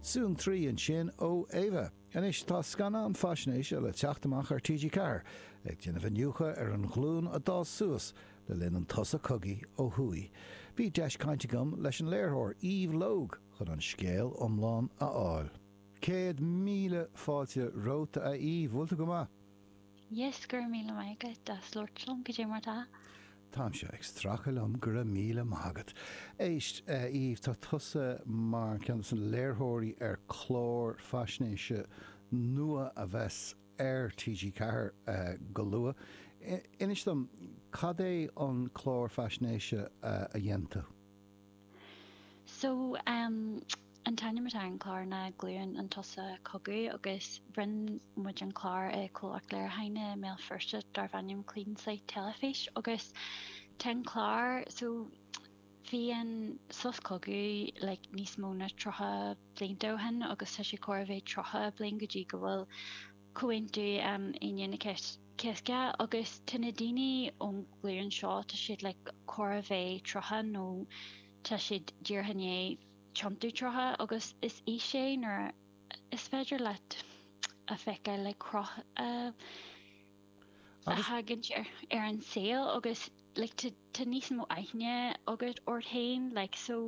Suantraí ansin ó Éabha. Anois tá scannán faisnéise le teacht amach ar TG4 ag déanamh iniúchadh ar an ghlúin a d'fhás suas le linn an tsosa cogaidh ó thuaidh. Bhí deis caint agam leis an léiritheoir Eve Logue chun an scéal iomlán a fháil. Céad míle fáilte romhat, a Eve. Bhfuil tú go maith? yes, go raibh míle maith agat as labhairt liom, cad é mar atá. Táimse ag stracadh liom, go raibh míle maith agat. Éist, a Eve, tá tusa mar cheann dos na léiritheoirí ar clár faisnéise nua a bheas ar TG Ceathair go luath. Inis dom, cad é an clár faisnéise a dhein tú? So, em, an t-ainm atá ar an chlár ná Glúin an tSosa Cogaidh agus rinne muid an clár i comhlacht léiriúcháin i mBéal Feirste darbh ainm Clean Slate Teilifís agus tá an clár, so bhí an sos cogaidh like níos mó na tríocha blianta ó shin agus tá sé chóir a bheith tríocha bliain go dtí go bhfuil Comhaontú Aoine an Chéasta agus tá na daoine ón nglúin seo, tá siad like chóir a bheith tríocha nó tá siad díreach i ndiaidh tiontú tríocha agus is aois é nuair a is féidir leat a feiceáil like cruth a thagann ar an saol agus like tá níos mó aithne agat ort féin like so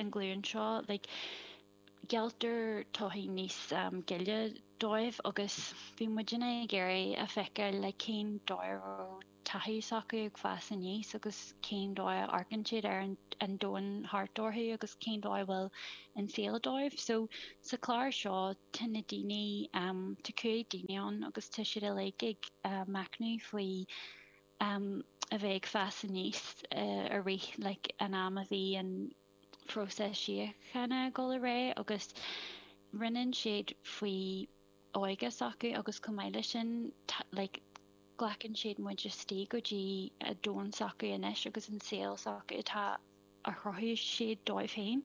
an ghlúin seo like Gealltar torthaí níos gile dóibh agus bhí muidinne ag iarraidh a fheiceáil like cén dóigh a raibh taithí s'acu ag fás aníos agus cén dóigh a amharcann siad ar an domhan thart orthu agus cén dóigh a bhfuil an saol dóibh. So, sa chlár seo tá na daoine, tá cúig duine ann agus tá siad uilig ag machnamh faoi a bheith ag fás aníos i rith like an am a bhí an. próiseas síochána ag dul ar aghaidh agus roinneann siad faoi óige s'acu agus chomh maith leis sin like glacann siad muid isteach go dtí a domhan s'acu anois agus an saol s'acu atá a chruthaigh siad dóibh féin.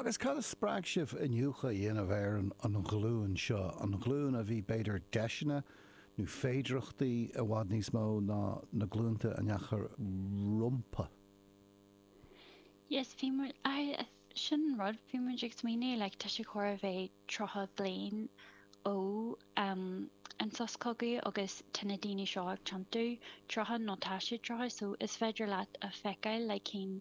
Agus cad a spreag sibh iniúchadh a dhéanamh ar an an ghlúin seo, an ghlúin a bhí b'fhéidir deiseanna nó féidireachtaí i bhfad níos mó ná na glúnta a ndeachaidh rompu? Yes, bhí muid, aye, sin an rud, bhí muid ag smaoineamh, like, tá sé chóir a bheith tríocha bliain ó an sos cogaidh agus tá na daoine seo ag tiontú, tríocha nó tá siad tríocha, so is féidir leat a fheiceáil, like, cén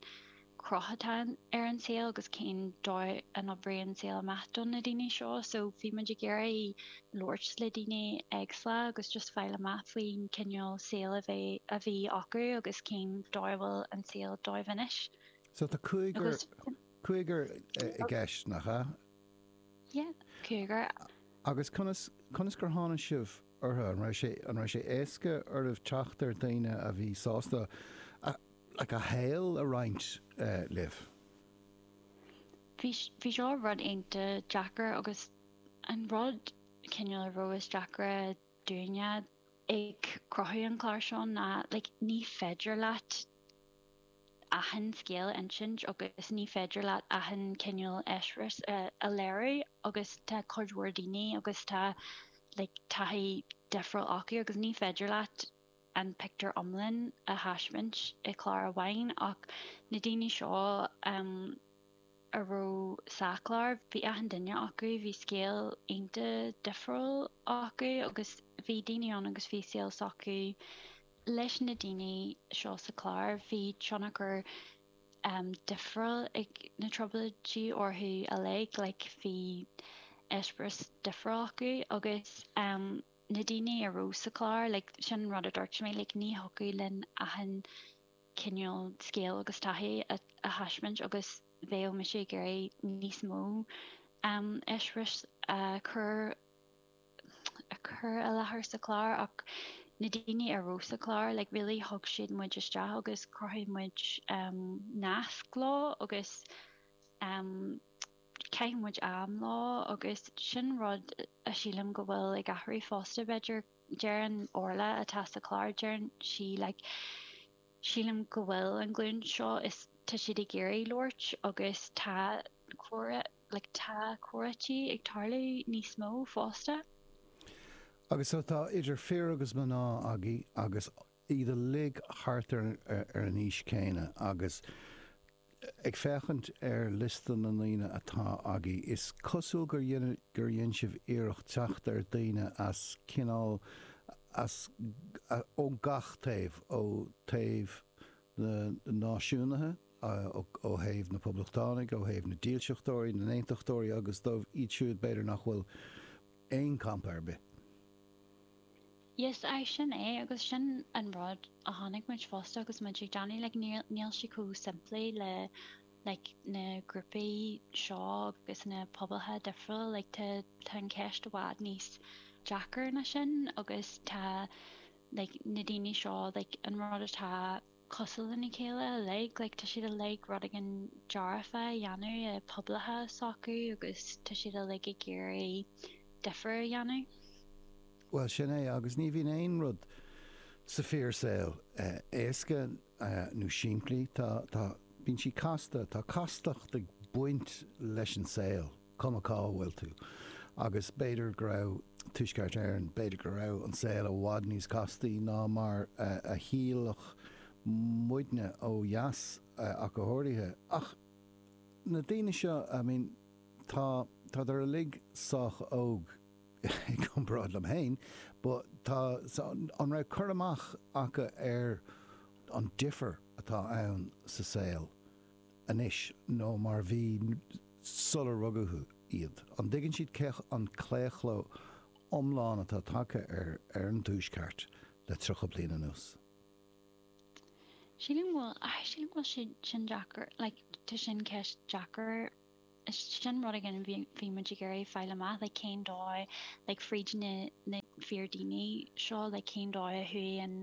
cruth atá ar an saol agus cén dóigh a n-oibríonn an saol amach do na daoine seo, so bhí muid ag iarraidh. labhairt le daoine éagsúla agus just fáil amach faoin cineál saol a bhí acu agus cén dóigh a bhfuil an saol dóibh anois. So tá cúigear, cúigear i gceist, nach ea? Yeah, cúigear. Agus conas, conas gur tháinig sibh orthu? An raibh sé, an raibh sé éasca oraibh teacht ar dhaoine a bhí sásta a, like a shaol a roinnt libh? Bhí, bhí seo rud iontach deacair agus An rud cineál a raibh is deacra dúinne ag cruthú an chláir seo ná like ní féidir leat achan scéal a insint agus ní féidir leat achan cineál eispéiris a léiriú agus tá cuid mhór daoine agus tá like taithí difriúil acu agus ní feidir leat an pictiúr iomlán a thaispeáint i gclár amháin ach na daoine seo a raibh sa chlár, bhí achan duine acu, bhí scéal iontach difriúil acu agus bhí daoine ann agus bhí saol s'acu. Leis na daoine seo sa chlár, bhí tionchar difriúil ag na Trioblóidí orthu uilig, like bhí eispéireas difriúil acu agus. na daoine a raibh sa chlár, like, sin an rud a dúirt mé, like, ní thiocfadh linn achan cineál scéal agus taithí a thaispeáint agus bheadh mise ag iarraidh níos mó eispéiris a chur, a chur i láthair sa chlár ach na daoine a raibh sa chlár, like, really thug siad muid isteach agus chruthaigh muid nasc leo agus. Chaith muid am leo agus sin rud a shílim go bhfuil ag athrú fosta b'fhéidir. Deireann Orla, atá sa chlár, deireann sí like sílim go bhfuil an ghlúin seo is tá siad ag iarraidh labhairt agus tá comhrá like tá comhráití ag tarlú níos mó fosta. Agus so tá idir fir agus mná againn agus. iad uilig thart ar an aois chéanna agus ag féachaint ar liosta na ndaoine atá agaibh, is cosúil gur dhein sibh iarracht teacht ar daoine as cineál as, ó gach taobh, ó thaobh na náisiúnaithe, ó thaobh na poblachtánaigh, ó thaobh na dílseachtóirí, na n-aontachtóirí agus dóibh siúd b'fhéidir nach bhfuil aon campa ar bith. Yes, aye, sin é, agus sin an rud a chonaic muid fosta agus muid ag déanamh, like, níl, níl sé chomh simplí le, like, na grúpaí seo agus na pobail difriúla, like, tá, tá an cheist i bhfad níos deacra ná sin agus tá, like, na daoine seo, like, an rud atá. cosúil lena chéile uilig, like tá siad uilig ag rud éigin dearfa a dhéanamh i pobail s'acu agus tá siad uilig ag iarraidh difir a dhéanamh. Bhuel, sin é, agus ní bhíonn aon rud sa fíor saol éasca nó simplí, tá, tá, bíonn sí casta, tá castacht ag baint leis an saol. cuma cá bhfuil tú. Agus b'fhéidir go raibh Tuaisceart Éireann, b'fhéidir go raibh an saol i bhfad níos castaí ná mar a shílfeadh muidne ó dheas ach go háirithe. Ach na daoine seo, I mean, tá, tádar uilig sách óg i gcomparáid liom féin, but tá, so an raibh cur amach acu ar an difear atá ann sa saol anois nó mar bhí sular rugadh iad. An dtuigeann siad cén claochlú iomlán atá tagtha ar an Tuaisceart le tríocha bliain anuas? Sílim go bhfuil, sílim go bhfuil sé sin deacair, like tá sin ceist deacair. Sin rud éigin a bhí muid ag iarraidh fáil amach, like cén dóigh, like fríd na fíor daoine seo, like cén dóigh a chuaigh an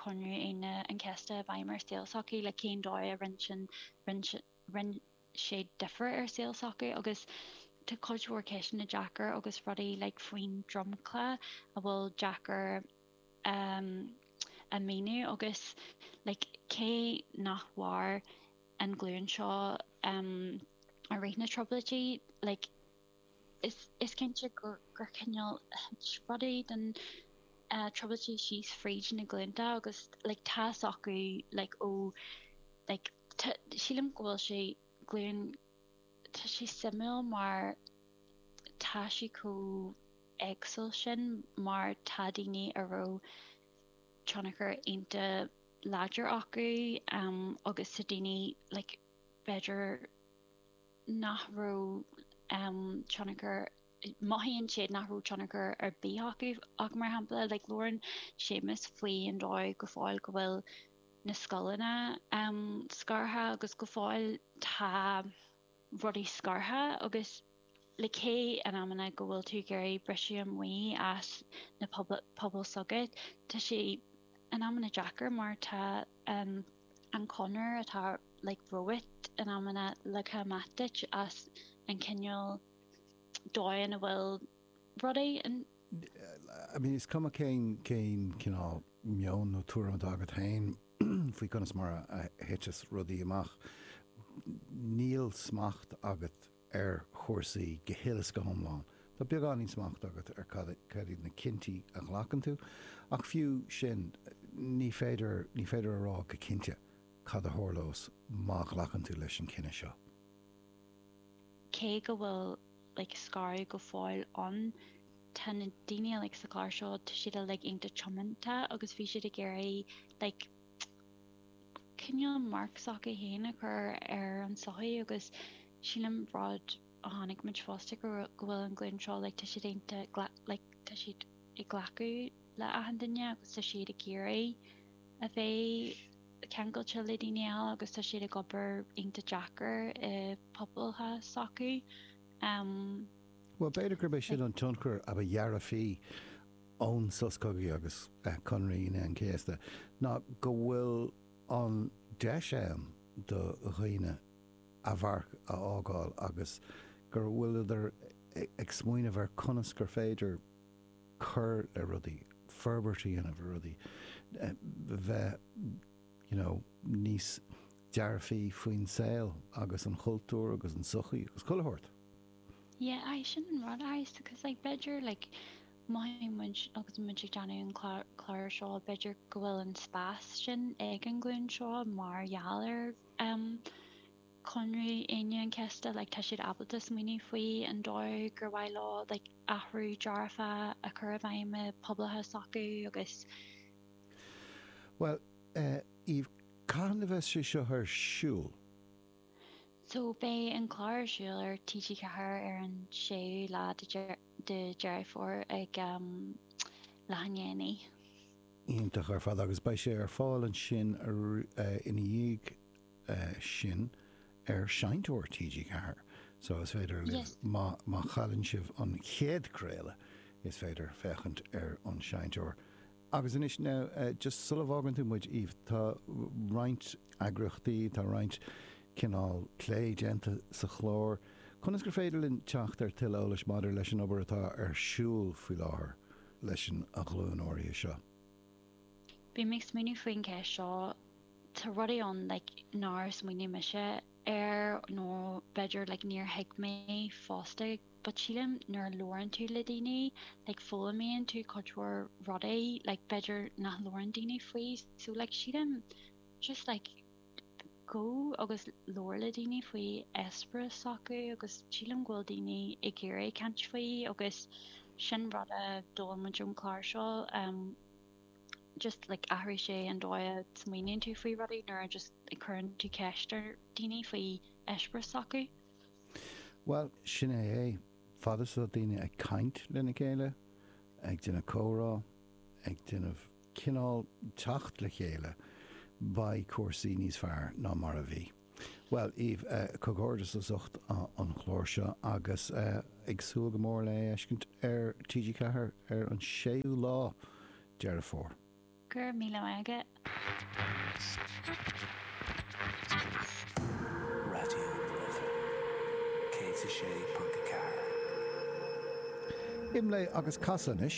Comhaontú Aoine an Chéasta i bhfeidhm ar saol s'acu, like cén dóigh a rinne sin, rinne sé difir ar saol s'acu agus tá cuid mhór ceisteanna deacair agus rudaí like faoin dromchla a bhfuil deacair a mhíniú agus like cé nár mhair an ghlúin seo i rith na Trioblóidí. Like is cinnte gur cineál spré rudaí de na Trioblóidí síos fríd na glúnta agus like tá fhios acu like ó like tá sílim go bhfuil sé glúin tá sé suimiúil mar tá sé chomh éagsúil sin mar tá daoine a raibh tionchar iontach láidir acu agus ansin daoine like b'fhéidir nach raibh tionchar, mothaíonn siad nach raibh tionchar ar bith acu ach mar shampla like labhrann Séamus faoi an dóigh go fóill go bhfuil na scoileanna scartha agus go fóill tá. rudaí scartha agus like cé in amanna go bhfuil tú ag iarraidh briseadh amuigh as na pobail s'agat, tá sé in amanna deacair mar tá an chonair atá like romhat in amanna leagtha amach duit as an chineál dóigh a bhfuil. rud éigin. I mean, is cuma cén cineál meoin nó tuairim atá agat féin faoi conas mar a thiteas rudaí amach, níl smacht agat ar chúrsaí go huile is go hiomlán. Tá beagáinín smacht agat ar cad iad na cinntí a ghlacann tú, ach fiú sin, ní féidir, ní féidir a rá go cinnte cad a tharlós má ghlacann tú leis an cinneadh seo. Cé go bhfuil like scaradh go fóill ann, tá na daoine like sa chlár seo, tá siad uilig iontach tiomanta agus bhí siad ag iarraidh like cineál marc s'acu féin a chur ar an sochaí agus sin an rud a chonaic muid fosta, go bhfuil an ghlúin seo like tá siad iontach like tá siad ag glacadh le achan duine agus tá siad ag iarraidh. a bheith ceangailte le daoine eile agus tá siad ag obair iontach deacair i bpobail s'acu. Bhuel, b'fhéidir gurb é sin an tionchar a ba dhearfaí ón Sos Cogaidh agus Conradh Aoine an Chéasta, ná go bhfuil an deis ann do dhaoine a mharc a fhágáil agus go bhfuileadar ag smaoineamh ar conas gur féidir, cur le rudaí, forbairt a dhéanamh ar rudaí, bheith you know níos dearfaí faoin saol agus an chultúr agus an sochaí agus chuile shórt. Yeah, aye, sin an rud, aye, so cause like b'fhéidir like mhothaigh muid agus muid ag déanamh an clár seo b'fhéidir go bhfuil an spás sin ag an ghlúin seo mar gheall ar ehm Chonradh Aoine an Chéasta like tá siad ábalta smaoineamh faoi an dóigh gur mhaith leo like athrú dearfach a chur i bhfeidhm i bpobail s'acu agus. Bhuel, Eve, cathain a bheas sé seo ar siúl? So, beidh an clár ar siúl ar TG4 ar an séú lá de de Dheireadh Fómhair ag um leath i ndiaidh a naoi. Iontach ar fad agus beidh sé ar fáil ansin ina dhiaidh. sin ar Seinnteoir TG4 so is féidir libh, má chailleann sibh an chéad craoladh, is féidir féachaint ar an Seinnteoir. Agus anois, now, just sula bhfágann tú muid, Eve, tá roinnt eagraíochtaí, tá roinnt cineál plé déanta sa chlár, conas gur féidir linn teacht ar tuilleadh eolais maidir leis an obair atá ar siúl faoi láthair leis an ghlúin áirithe seo? tá rudaí ann like nár smaoinigh mise air nó b'fhéidir like níor thuig mé fosta but sílim nuair a labhrann tú le daoine like foghlaimíonn tú cuid mhór rudaí like b'fhéidir nach labhrann daoine faoi so like sílim just like gabh agus labhair le daoine faoi eispéireas s'acu agus sílim go bhfuil daoine ag iarraidh caint faoi agus sin rud a d'fhoghlaim muid ón chlár so umm just like athraigh sé an dóigh a smaoiníonn tú faoi rudaí nuair a just a chuireann tú ceist ar daoine faoi eispéireas s'acu. Bhuel, sin é é. Fad is atá daoine ag caint lena chéile, ag déanamh comhrá, ag déanamh cineál teacht le chéile, beidh cúrsaí níos fearr ná mar a bhí. Bhuel, Eve, comhghairdeas as ucht an chláir seo agus ag súil go mór le é a fheiscint ar TG4 ar an 6ú lá de Dheireadh Fómhair. Go raibh míle maith agat. Raidió na Life 106.4. Imleigh agus casadh anois.